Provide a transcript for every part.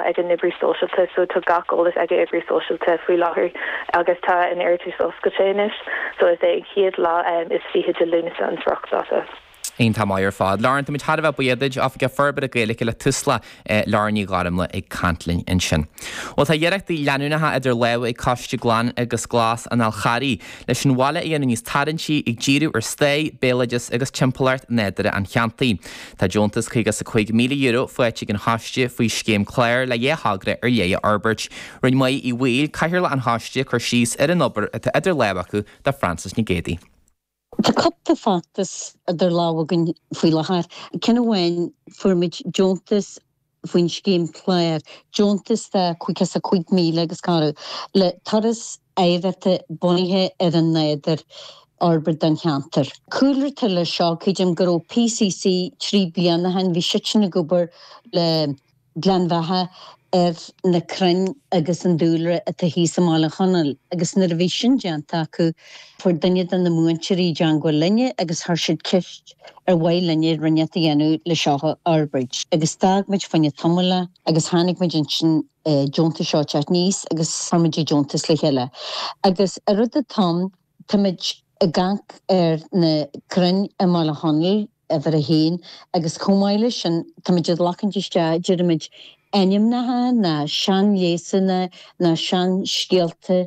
ag an oibrí sóisialta so tá gach eolas ag an oibrí sóisialta faoi láthair agus tá an iarratas oscailte anois so is é an chéad lá is fiche de Lúnasa an spriocdáta. An-mhaith ar fad. Lauren, táimid thar a bheith buíoch duit, Oifigeach Forbartha Gaeilge le Tusla, Lauren Ní Ghairmle ag caint linn ansin. Bhuel, tá iarrachtaí leanúnacha idir lámha ag Coiste Glan agus Glas an Fhal Charraigh leis an bhaile a dhéanamh níos tarraingtí, ag díriú ar stair, béaloideas agus timpeallacht nádúrtha an cheantair. Tá deontas €55,000 faighte ag an choiste faoi scéim Clár le dhá thogra ar leith a fhorbairt. Rinne Maedhbh Uí Bhaoill, cathaoirleach an choiste, cur síos ar an obair atá idir lámha acu do Frances Nic Géidigh. Tá cúpla feachtas idir lámha againn faoi láthair. Ceann amháin, fuair muid deontas faoin scéim clár deontas de €55,000 agus cabhrú le turas eachtra bunaithe ar an nádúr a fhorbairt don cheantar. Cúlra atá leis seo, Creidim go raibh PCC trí bliana ó shin, bhí siadsan ag obair le Gleann Bheatha ar na crainn agus an dúlra atá thíos i mBaile Chonaill agus nuair a bhí sin déanta acu fuair duine de na múinteoirí i dteagmháil linne agus chuir siad ceist Ar mhaith linne rud inteacht a dhéanamh leis seo a fhorbairt agus d'fhág muid faoin am é tamall agus tháinig muid ansin an deontas seo teacht aníos agus fuair muid an deontas le chéile agus an rud atá ann táimid ag caint ar na crainn i mBaile Chonaill uimhir a haon agus chomh maith leis sin táimid ag glacaint isteach deirimid ainmneacha nó seanleigheasanna nó seanscéalta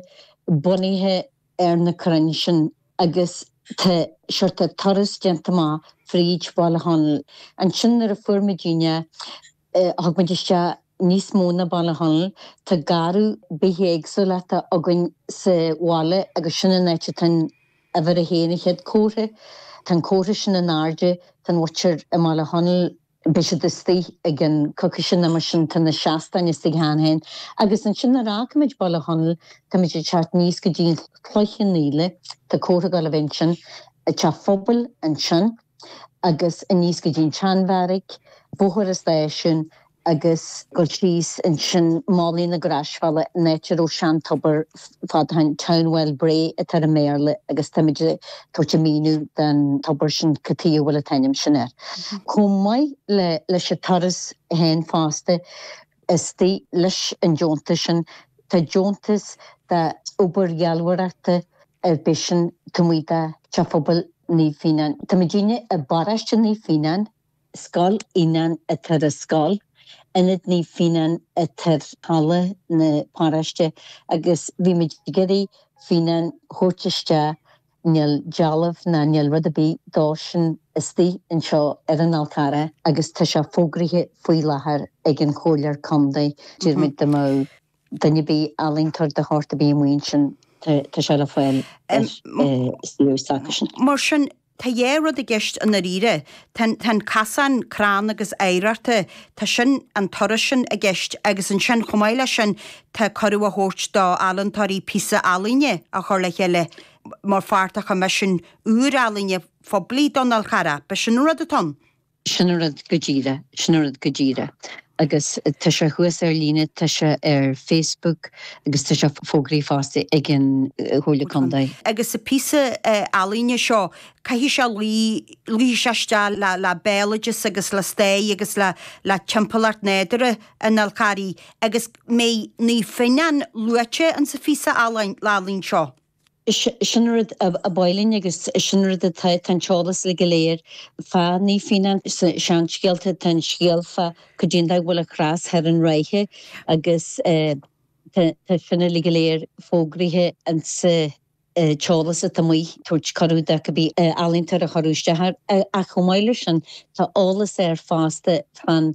bunaithe ar na crainn sin agus tá seort turas déanta amach fríd Bhaile Chonaill. Ansin nuair a fuair muid inne thug muid isteach níos mó ná Baile Chonaill. Tá garraí bithéagsúlachta againn sa bhaile agus sin an áit atá an uimhir a haon, an chéad chomhartha. Tá an comhartha sin in airde, tá an mhuintir i mBaile Chonaill. Beidh siad istigh ag an Cháisc sin amuigh sin tá na seastáin istigh cheana féin agus annsin nuair a fhágfaimid Baile Chonaill táimid ag teacht aníos go dtí'n Chloich Cheann Fhaola tá comhartha ag gabháil a bheith annsin ag teach an phobail annsin agus aníos go dtí'n tSean Bheairic Bóthar an Stáisiúin agus ag gabháil síos annsin Malaidh na Graisbheála an áit a raibh sean tobar fadó, the town well brae atá air i mBéarla agus táimid ag tabhairt an míniú don tobar sin cad chuige a bhfuil an t-ainm sin air. Chomh maith le leis an turas féin fosta istigh leis an deontas sin tá deontas do obair dhealbhóireachta ar phíosa adhmaid do theach phobail Naomh Fíonáin. Táimidinne i bparóiste Naomh Fíonáin Scoil Fhionáin atá ar an scoil, Ionad Naomh Fionán atá ar halla na paróiste agus bhí muid ag iarraidh Fionán a thabhairt isteach Níl dealbh ná níl rud ar bith dósan istigh anseo ar an Fhál Carrach agus tá sé fógraithe faoi láthair ag an Chomhairle Contae, d'iarr muid dá mbeadh. Duine ar bith ealaíontóir de shórt ar bith amuigh ansin, tá sé le fáil is fiú is aca sin. Mar sin, tá dhá rud i gceist i ndáiríre. Tá an casán crann agus oidhreachta, tá sin, an turas sin, i gceist agus ansin, chomh maith leis sin, tá cuireadh á thabhairt do ealaíontóirí píosa ealaíne a chur le chéile mar pháirt de choimisiún úr ealaíne phoiblí don Fhál Charrach. Ab é sin an rud atá ann. Sin an rud go díreach, sin an rud go díreach. Agus tá sé thuas ar líne, tá sé ar Facebook agus tá sé fógraithe fosta ag an Chomhairle Contae. Agus sa phíosa ealaíne seo, caithfidh sé luí, luífidh sé isteach le, le béaloideas agus le stair agus le, le timpeallacht nádúrtha an Fháil Charraigh. Agus mbeidh Naomh Fionán luaite insa phíosa ealaíne seo. Sin rud a ba mhaith linn agus sin rud atá, tá an t-eolas uilig go léir fá Naomh Fionán sa seanscéalta. Tá an scéal fá goidé an dóigh a bhfuil an chros thoir i Ráithe agus tá sin uilig go léir fógraithe ansa t-eolas atá amuigh ag tabhairt cuireadh do cibé ealaíontóir a chur isteach air. Ach chomh maith le sin tá eolas air fosta fán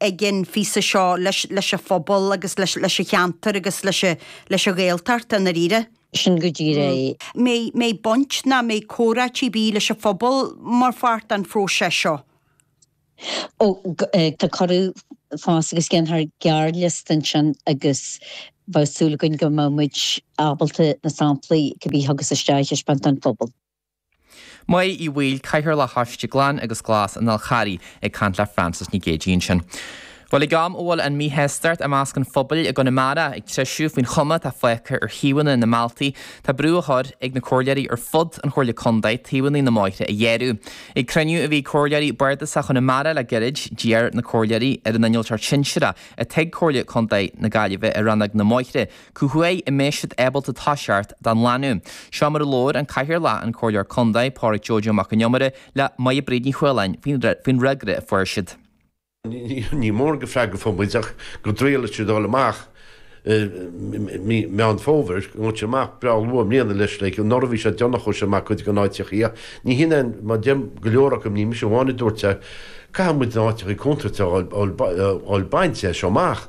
ag an phíosa seo leis an phobal agus leis an cheantar agus leis an Ghaeltacht i ndáiríre. Sin go díreach é. An mbeidh baint ná mbeidh comhráití ar bith leis an phobal mar pháirt den phróiseas seo. Ó, tá cuireadh fós agus dhéanfar gearrliosta ansin agus bheadh súil againn go mbeimid ábalta na samplaí cibé a thiocfas isteach a thaispeáint don phobal. Mae Uí Bhaoill, Cathaoirleach Choiste Glan agus Glas an Fháil Charraigh ag caint le Frances Nic Géadaigh ansin. Bhuel ag am a bhfuil an míshástacht i measc an phobail i gConamara ag treisiú faoin chuma atá fágtha ar thaobhanna na mbealtaí tá brú á chur ag na comhairleoirí ar fud an Chomhairle Contae taobhannaí na mbóithre a ghearradh. Ag cruinniú a bhí ag comhairleoirí Bardasach Chonamara le gairid d'iarr na comhairleoirí ar an Innealtóir Sinsearach atá ag Comhairle Contae na Gaillimhe i Rannóg na mBóithre, cá huair a mbeadh siad ábalta toiseacht dá nglanadh. Seo mar a labhair an Cathaoirleach, an Comhairleoir Contae, Pádraig Joe Joe Mac an Iomaire, le Máire Bríd Ní Chualáin faoin fhreagra a fuair siad. Ní mórán de fhreagra a fuair muid ach go dtrialfaidh siad a dhul amach i mí Meán Fómhair, go ngabhfaidh siad amach breá luath i mbliana leis. Like, anuraidh bhí sé déanach a chuaigh siad amach cuid de na háiteachaí ach ní shin é an, mar a deir go leor acu, ní mise amháin a dúirt é, caithfidh muid na háiteachaí contúirteacha a fháil bainte as seo amach.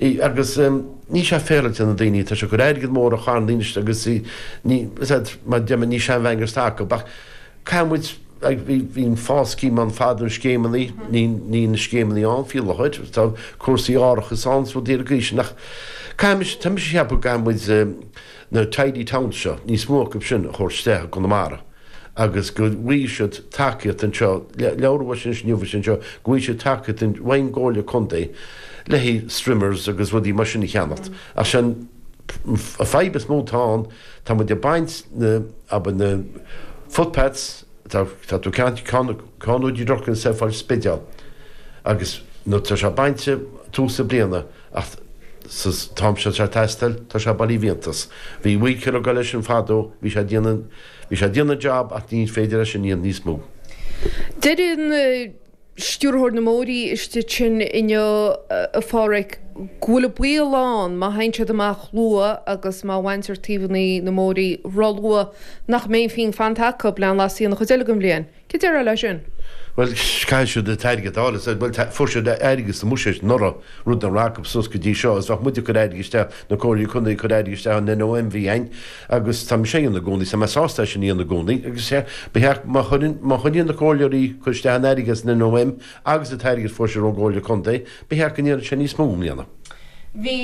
i agus níl sé féaráilte ar na daoine. Tá sé ag cur airgead mór a charn inis agus i ní is é mar deimhin ní sean bhean gasta acu ach caithfidh muid ag bhí bhí an FÁS scheme ann fadó na scéimeannaí níl níl na scéimeannaí ann faoi láthair tá cúrsaí árachais ann is rudaí mar sin ach caithfidh mise tá mise a cheapadh go gcaithfidh muid na Tidy Towns seo níos mó acu sin a thabhairt isteach i gConamara agus go bhfaighidh siad tacaíocht anseo, labhair mé faoi sin inniu a bhfuil sin anseo, go bhfaighidh siad tacaíocht ón gComhairle Contae le haghaidh strimmers agus rudaí mar sin a cheannacht. Ach sin an fadhb is mó atá ann, tá muid ag baint na, abair na footpaths, tá tá tú ag caint ag caint ó Doire Locháin siar faoin Spidéal agus nuair atá sé bainte tús na bliana, Ach sa t-am seo sa taistil tá sé bailithe i bhfiántas. Bhí weedkiller ag dul leis sin fadó, bhí sé ag déanamh, bhí sé ag déanamh an job ach ní féidir leis é a dhéanamh níos mó. Deireann Stiúrthóir na mBóithrí istigh ansin inniu, a Pháraic, go bhfuil an baol ann má théann siad amach luath agus má bhaintear taobhannaí na mbóithrí róluath nach mbeidh aon phingin fanta acu lena leasú an chuid eile den bhliain. Céard déarfá le sin? Bhuel, caithfidh siad an t-airgead a fháil, is é. Bhuel, fuair siad airgead sa mBuiséid anuraidh, rud nach raibh acu suas go dtí seo, is bheadh muid ag cur airgid isteach, na Comhairleoirí Contae ag cur airgid isteach ón NOM, bhí, an, agus tá mise á dhéanamh i gcónaí, is tá mé sásta é sin a dhéanamh i gcónaí, agus, is é, ba cheart, má chuireann, má choinníonn na Comhairleoirí ag cur isteach an airgid as an NOM, agus an t-airgead a fuair siad ón gComhairle Contae, ba cheart go ndéanfadh sé níos mó i mbliana. Bhí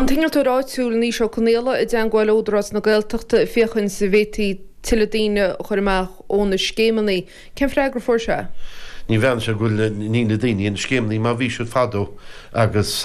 an t-innealtóir áitiúil Naoise Ó Conaola i dteangmháil le hÚdarás na Gaeltachta féachaint an bhféadfaí tuilleadh daoine a chur amach ó na scéimeannaí. Cén freagra a fuair sé? Ní bheadh sé go bhfuil na daoine sna scéimeannaí mar a bhí siad fadó agus.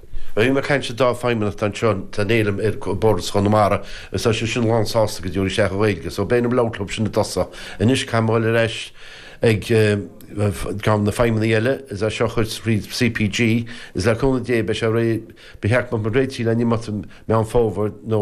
Bhí mé ag caint le dá feidhmeannach anseo atá ag déileáil le bardas Chonamara is tá siad sin lán sásta go dtabharfaidh siad isteach an Ghaeilge so beidh an Below Club sin i dtosach. Anois caithfidh mé dhul ar ais ag na feidhmeannaigh eile is é seo a chur tríd CPG is le cúnamh Dé beidh sé réidh ba cheart go mbeadh muid réitithe le n-imeacht i Meán Fómhair nó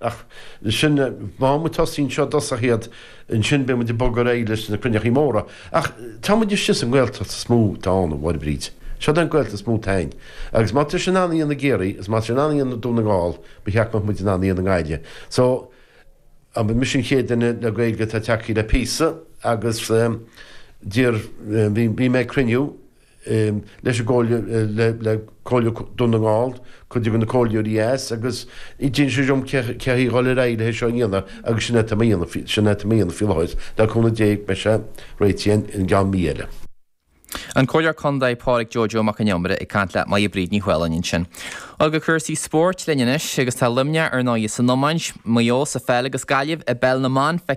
Ach sin, tá muid ag tosaí anseo i dtosach is ansin beidh muid ag bogadh ar aghaidh leis na cruinneachaí móra. Ach tá muid istigh sa nGaeltacht is mó atá ann, a Mháire Bríd. Seo é an Ghaeltacht is mó atá ann. Agus má tá siad in ann é a dhéanamh i gCiarraí, is má tá siad in ann é a dhéanamh i nDún na nGall, ba cheart go mbeadh muid in ann é a dhéanamh i nGaillimh. So, is mise an chéad duine le Gaeilge atá acu le píosa? Agus d'iarr, bhí mé ag cruinniú. leis an gComhairle, le Comhairle Dún na nGall, cuid de na Comhairleoirí dheas agus d'inis sé dhom cé le haghaidh dhul ar aghaidh leis seo a dhéanamh agus sin é tá mé a dhéanamh faoi, sin é tá mé a dhéanamh faoi láthair, le cúnamh Dé beidh sé réitithe i gceann mí eile. An Comhairleoir Condae Pádraig Joe Joe Mac an Iomaire ag caint le Moya Bríd Ní Choileáin ansin. Chuig cúrsaí spóirt linn anois agus tá Luimneach ar ndóigh san iomáint, Maigh Eo sa pheil agus Gaillimh i bpeil na mban feicthe